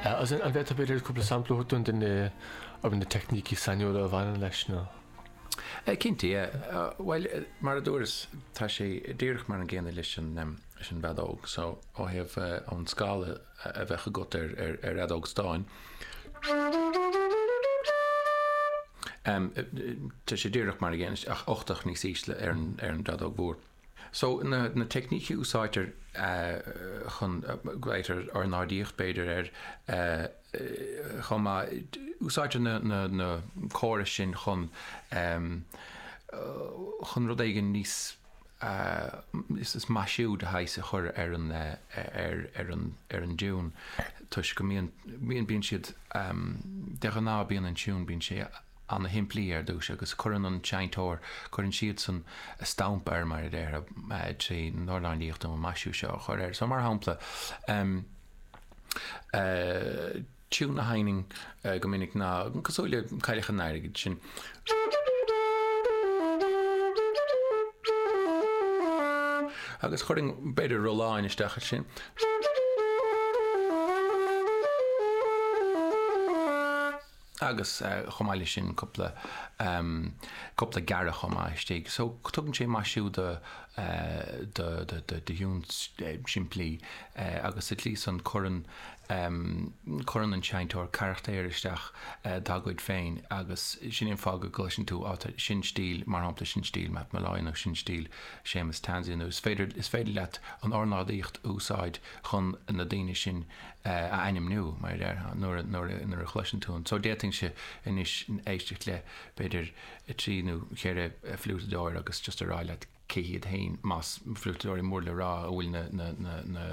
An bhféadfá b'fhéidir cúpla sampla a thabhairt dúinn de na teicnící sainiúla a bhaineann leis nó. Cinnte, yeah. Bhuel, mar a dúras, tá sé díreach mar an gcéanna leis an bhfeadóg. So, ó thaobh an scála a bheadh agat ar fheadóg stáin, tá sé díreach mar an gcéanna, ach ochtach níos ísle ar an bhfeadóg mhór. So, na teicnící a úsáidtear chun, glaoitear ornáidíocht, b'fhéidir, air, chomh maith, úsáidtear na córais sin chun, chun rud éigin níos, is maisiú de shaghas a chur ar an, ar an, ar an dtiún toisc go mbíonn, bíonn siad, de ghnáth bíonn an tiún, bíonn sé, ana-shimplí ar dtús agus cuireann an seinnteoir, cuireann siadsan a stamp air mar a déarfá, trí na hornáidíochta nó maisiú seo a chur air. So, mar shampla, tiúin a sheinnim go minic ná, cosúil le Cailleach an Airgid, sin. Agus chuirfinn, b'fhéidir, rolláin isteach air sin. Agus chomh maith leis sin, cúpla, em, cúpla gearradh chomh maith istigh. So, tugann sé maisiú do, eh, do, do, do thiúin simplí, eh, agus sa tslí san cuireann, em, cuireann an seinnteoir carachtair isteach dá gcuid féin agus sin é an fáth go gcloiseann tú, á, sin stíl, mar shampla, sin stíl Matt Molloy nó sin stíl Séamus Tansey nó is féidir, is féidir leat an ornáidíocht a úsáid chun na daoine sin, a ainmniú, mar a déarfá, nuair, nuair, nuair a chloiseann tú an, so d'fhéadfainnse anois éisteacht le, b'fhéidir, trí nó ceithre fliúiteadóir agus just a rá leat cé hiad fhéin, más fliúiteadóirí mór le rá a bhfuil na, na, na, na,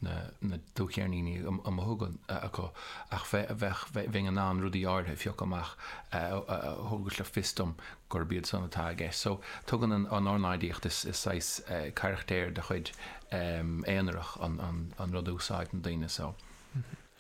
na, na dúcheirníní amuigh ansin acu, ach bheith, bheadh, bheinn in ann rudaí áirithe a phiocadh amach a, a, a thabharfadh le fios dom gurb iad san atá i gceist. So, tugann an an ornáidíocht, is is saghas carachtéir de chuid, aonarach an an an rud a úsáideann daoine. So.